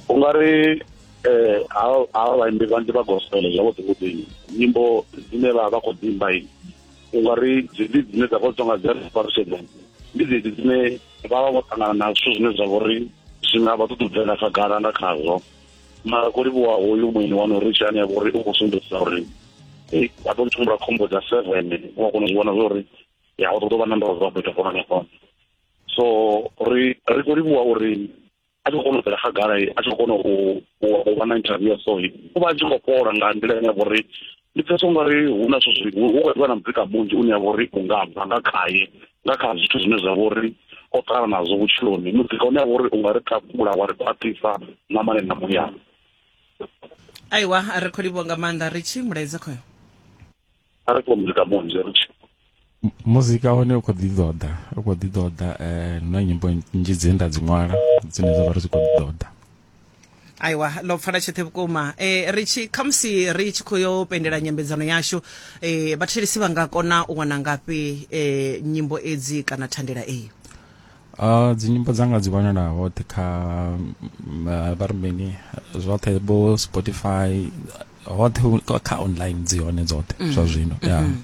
u nga ri eh ha vhaimbi vhanzhi vha gospel zwavhuḓi vhuḓi nyimbo dzine vha vha khou dzi imba i u nga ri dzedzi dzine dza khou tonga dzi reparation ndi dzedzi dzine vha vha vho ṱangana na zwithu zwine zwa vhori zwi nga vha ṱuṱubvela khagala nga khazwo mara ko livhuwa hoyu muini wanu ri tshi ane a vhori u khou sumbedzisa uri a tou tshimbula khombo dza seven u a kona u zwi vhona zwa uri ya u ṱoḓo vha na ndozwa fhethu fona na fona so ri ri khou livhuwa uri a tshi khou kona u bvela khagala a tshi khou kona u vha na interview ya so u vha a tshi khou fhola nga nḓila ine ya vha uri ndi pfesa ungari hu na zwithu zwi hu khou ḓivha na muzika munzhi une ya vha uri u nga bva nga khaye nga kha zwithu zwine zwa vha uri o ṱala nazwo vhutshiloni muzika une ya vha uri u nga ri takula wa ri khwaṱhisa na mane na muyani aiwa a ri kho livhuwa nga maanḓa ri tshi mulaedza khoyo a ri kho muzika munzhi ri tshi muzika hone u khou ḓi ḓoḓa u khou ḓi ḓoḓa um na nyimbo nnzhi dzine nda dzi ṅwala dzine dza vha ri dzi khou ḓi ḓoḓa aiwa ḽo pfala tshoṱhe vhukuma um ri tshi khamusi ri tshi khou yo pendela nyambedzano yashu um vhathelisi vha nga kona u wana ngafhi um nyimbo edzi kana thandela eyi Uh, dzinyimbo dzanga dzi wanala hoṱhe kha uh, vha ri mini zwoṱhe vho spotify hoṱhe kha online dzi hone dzoṱhe mm. zwa zwino ya mm-hmm.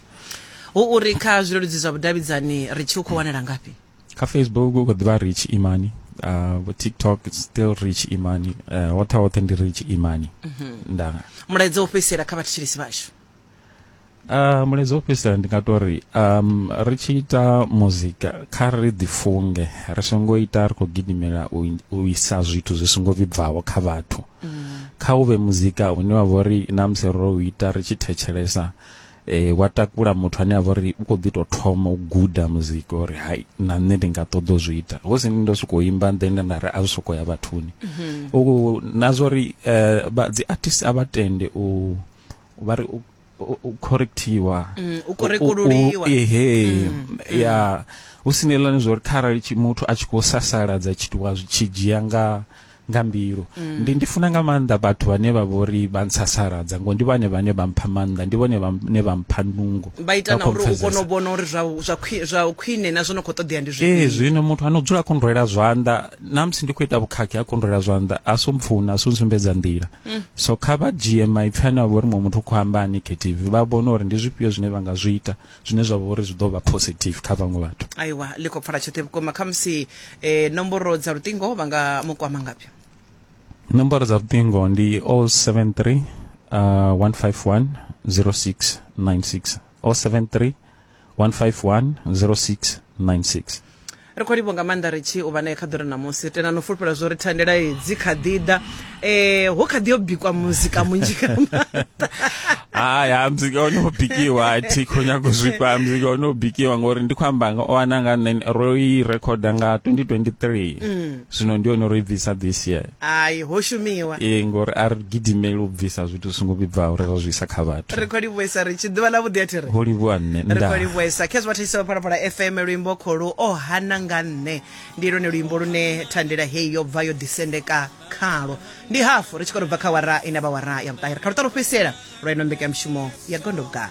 hu uri kha zwileludzi zwa vhudavhidzani ri tshi u khou wanala ngafhi kha facebook u khou ḓivha rich imani uh, tiktok still rich imani uh, hoṱhe hoṱhe ndi rich imani mm-hmm. nda mulaedza u fhedzisela kha vhathetshelesi vhashu Uh, mulezi wo fhedzisela ndi nga to ri um ri tshi ita muzika kha ri ḓifunge ri songo ita ri khou gidimela u, in- u isa zwithu zwi songo vhibvaho kha vhathu kha u vhe muzika une wa vha uri na musi ro u ita ri tshi thetshelesa eh, wa takula muthu ane a vha uri u khou ḓi tou thoma u guda muzika uri hai na nṋe ndi nga ṱoḓa u zwi ita hu si ni ndo sokou imba then nda ri a zwi sokou ya vhathuni U- na zwa uri eh, vha- dzi artist a vha tende u vha ri u correctiwa mm, u korekululiwa ehe mm, mm. ya hu si nelani zwo ri kharali muthu a tshi khou sasaladza tshitiwa zwi tshi dzhia nga nga mbilu ndi ndi funa nga maanḓa vhathu vhane vha vhori vha ntsasaladza ngo ndi vhane vhane vha mpha maanḓa ndi vhone vhane vha mpha nungo vha ita na uri u kone u vhona uri zwa zwa zwa khwine na zwo no khou ṱoḓea ndi zwifhio eh zwino muthu ano dzula kondwela zwanḓa na musi ndi khou ita vhukhakhi a kondwela zwanḓa a so mpfuna a so nsumbedza nḓila mm. so kha vha dzhie maipfi ane avha uri muṅwe muthu u khou amba a negative vha vhone uri ndi zwifhio zwine vha nga zwi ita zwine zwa vha uri zwi ḓo vha positive kha vhaṅwe vhathu aiwa ḽi khou pfala tshoṱhe vhukuma khamusi eh, nomboro dza luṱingo vha nga mu kwama ngafhi nomboro dza luṱingo ndi 073 uh, 151 0696 073 1510696 ri khou livho nga maanḓa ri tshi u vha nae kha ḓura ṋamusi tena no fulufhela zwo ri thandela hedzi kha ḓi ḓa um ho kha ḓi yo bikwa muzika munzhi nga maanḓa hai ha muzika o no bikiwa a thi khou nyago zwifha muzika o no bikiwa ngori ndi khou amba nga o ana nga nṋe ro i rekhoda nga 2023 mm. zwino ndi hone ro i bvisa this year hayi ho shumiwa ee ngori a ri gidimeli u bvisa zwithu zwi songo vhibvaho ri ra zwi isa kha vhathu ri khou livhuesa ri tshi ḓuvha ḽa vhuḓi a thi ri ho livhuwa nṋe ri nda khou livhuesa khezwi vhathetshelisa vha phalaphala fm luimbo kholu o hana nga nṋe ndi lwone luimbo lune thandela heyi yo bva yo ḓisendeka khalo ndi hafu ri tshi khou tou bva kha wara ine vha wara ya vhuṱahe ri kha luṱa lwo fhedzisela lwa ino mbekanyamushumo ya gondoga